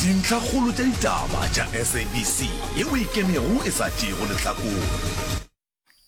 Dintlhakgolo tša ditaba tša SABC ye o ikemego e sa tšeego lehlakore.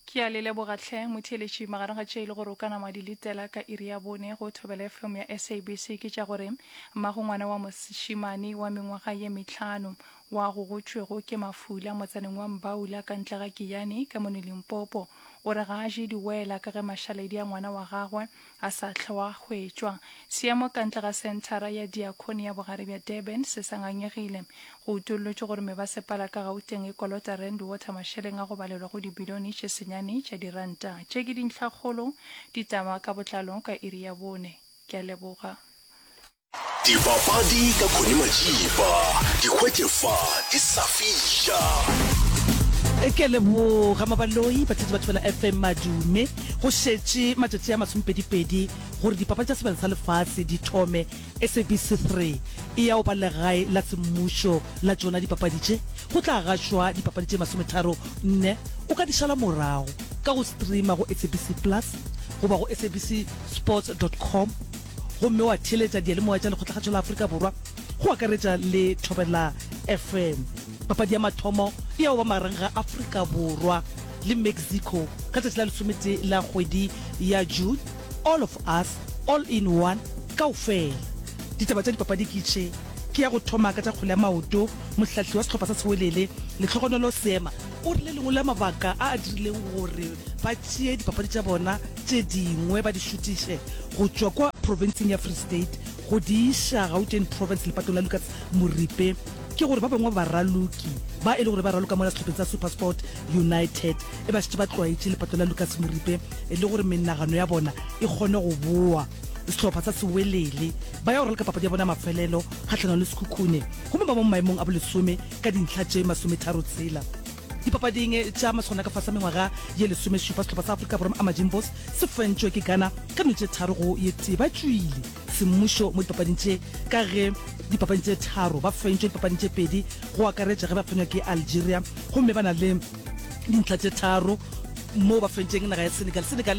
Ke a le leboga tlhe motheeletši. Magareng ga tše e le gore o ka nama wa di letela ka iri ya bone go Thobela FM ya SABC ke tša gore, Mmago ngwana wa mošemane wa mengwaga ye mehlano wa go gotšwego ke mafula motsaneng wa Mbaula ka ntle ga Giyani ka mono Limpopo o re ga a je diwela ka ge mašaledi a ngwana wa gagwe a sa hlwe wa hwetšwa. Seemo ka ntle ga Senthara ya Diakone ya Bogare bja Durban se sa ngangegile. Go utollotšwe gore mebasepala ka Gauteng e kolota Rand Water mašeleng a go balelwa go dibilione tše senyane tša diranta. Tše ke dintlhakgolo. Ditaba ka botlalo ka iri ya bone. Ke a leboga. Dipapadi ka Connie Majiba, di hwetše fa di sa fiša. Ke a leboga Mabaloi, batletse ba Thobela FM madume. Go šetše matšatši a masomepedipedi gore dipapadi tša sebele sa lefase di thome. SABC 3 e ya go ba legae la semmušo la tšona dipapadi tše. Go tla gašwa dipapadi tše masometharo nne. O ka di šala morago ka go streama go SABC Plus goba go sabcsports.com. gomme wa theeletša diyalemoya tša Lekgotlakgašo la Afrika Borwa, go akaretša le Thobela FM. Papadi ya mathomo e ya go ba magareng ga Afrika Borwa le Mexico ka tšatši la lesometee la kgwedi ya June. All of Us, All in One, Kaofela. Ditaba tša dipapadi ke tše, Ke ya go thoma ka tša kgwele ya maoto, Mohlahli wa sehlopha sa Sewelele, Letlhogonolo Seema, o re le lengwe la mabaka a a dirileng gore ba tšee dipapadi tša bona tše dingwe ba di šutiše go tšwa kwa profenseng ya Free State go di iša Gauteng Province lepatong la Lucas Moripe ke gore ba bangwe ba baraloki ba e le gore ba raloka mola sehlopheng sa Supersport United e ba šetše ba tlwaetše lepato la Lucas Moripe le gore menagano ya bona e kgone go boa sehlopha sa Sewelele ba ya go raloka papadi ya bona ya mafelelo kgahlanong le Sekhukhune gomme ba mo maemong a bolesome ka dintlha tše masometharo tshela. Dipapading tša maswana ka fasa mengwaga ye lesomešupa, sehlopha sa Afrika Borwa Amajimbos se fentšwe ke Ghana ka meno tše tharo go ye tee. Ba tšwile semmušo mo dipapading tše ka ge dipapading tše tharo ba fentšwe dipapading tše pedi go akaretša ge ba fenywa ke Algeria gomme ba na le dintlha tše tharo moo ba fentšeng naga ya Senegal. Senegal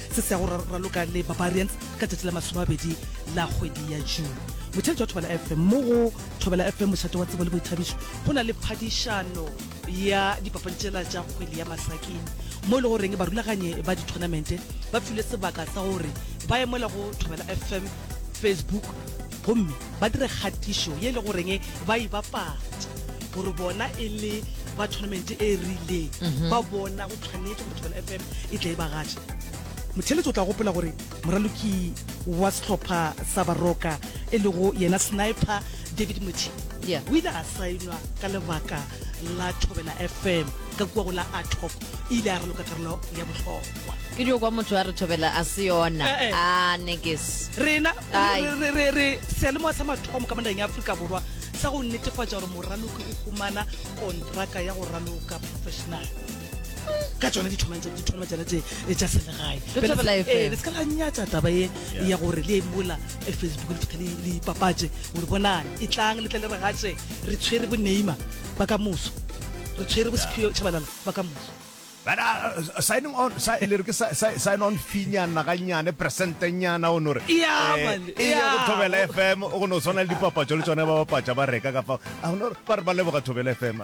se se ya go raloka le barbarians ka tšatši la masomabedi la kgwedi ya june motšheletši wa thobela fm mo go thobela fm mošate wa tsebo le boithabišo go na le phadišano ya dipapadi tšela tša kgwele ya masaking mo e le goreng barulaganye ba dithonamente ba filwe sebaka sa gore ba emela go thobela fm facebook gomme ba dire kgatišo ye e le goreng ba e bapatša gore bona e le ba tournament e rileng mhm. ba bona go tshwanetse fm e tla e bagatša motheletso o tla gopela gore moraloki wa sehlopha sa baroka e lego yena sniper david mothi Yeah. o ile a saenwa ka lebaka la thobela fm ka kua go la atop e ile a raloka karolo ya bohlokwa ke dio kwa motho a re thobela a se yona Eh, eh. a nekes rena Ai. re- re- re- re seyalemoya sa mathomo ka monageng ya aforika borwa sa go netefatša gore moraloki o humana kontraka ya go raloka professional ka tsona ditholwana tsena tse e tša selegae eh, le se ka la nyatsa taba e ya gore le emola e facebook le fitlha le ipapatse gore bonang e tlang le tle le regatse re tshwere bo neima ba ka moso re tshwere bo sephio chabalala ba ka moso uh, signing on sa e le re ke sign on finyana ga nyane percente nyana o no re e ya go thobela fm o go no tshwana le dipapatso le tsone ba bapatsa ba reka ka fa a no ba re ba leboga thobela fm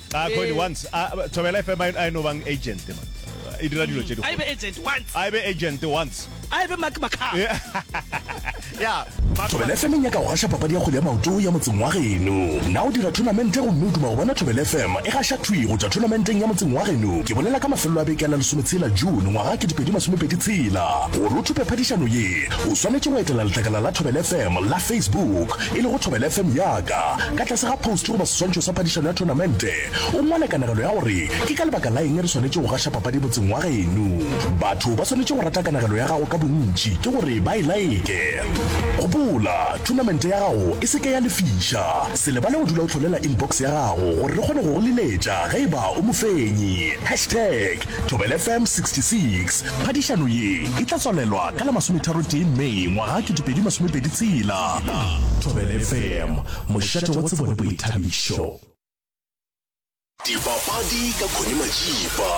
A Connie once a Thobela FM a e no bang agent man. E dira dilo tše di. A e be agent once. A e be agent once. A e be Mark Makau. Yeah. Thobela FM e nyaka go gaša papadi ya kgwele ya maoto ya motseng wa geno. Na o dira thonamente gomme o duma go bona Thobela FM e gaša thwi go tšwa thonamenteng ya motseng wa geno? Ke bolela ka mafelelo a beke a la lesometshela June ngwaga 2026. Gore o thope phadišano ye, o swanetše go etela letlakala la Thobela FM la Facebook. e lego Thobela FM ya ka, ka tlase ga phoustu goba seswantšho sa phadišano ya thonamente, o ngwale kanegelo ya gore ke ka lebaka la eng re swanetše go gaša papadi motseng wa geno. Batho ba swanetše go rata kanegelo ya gago ka bontši ke gore ba e laeke. Gopola, thonamente ya gago e se ke ya lefiša. Se lebale go dula o hlolela inbox ya gago gore re kgone go go leletša ge e ba o mofenyi. Hashtag. Thobela FM 66, phadišano ye e tla tswalelwa ka la masometharo tee May ngwaga 2026. Thobela FM, mošate wa tsebo le boithabišo. Dipapadi ka Connie Majiba.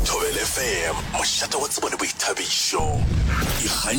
Thobela FM, mošate wa tsebo le boithabišo.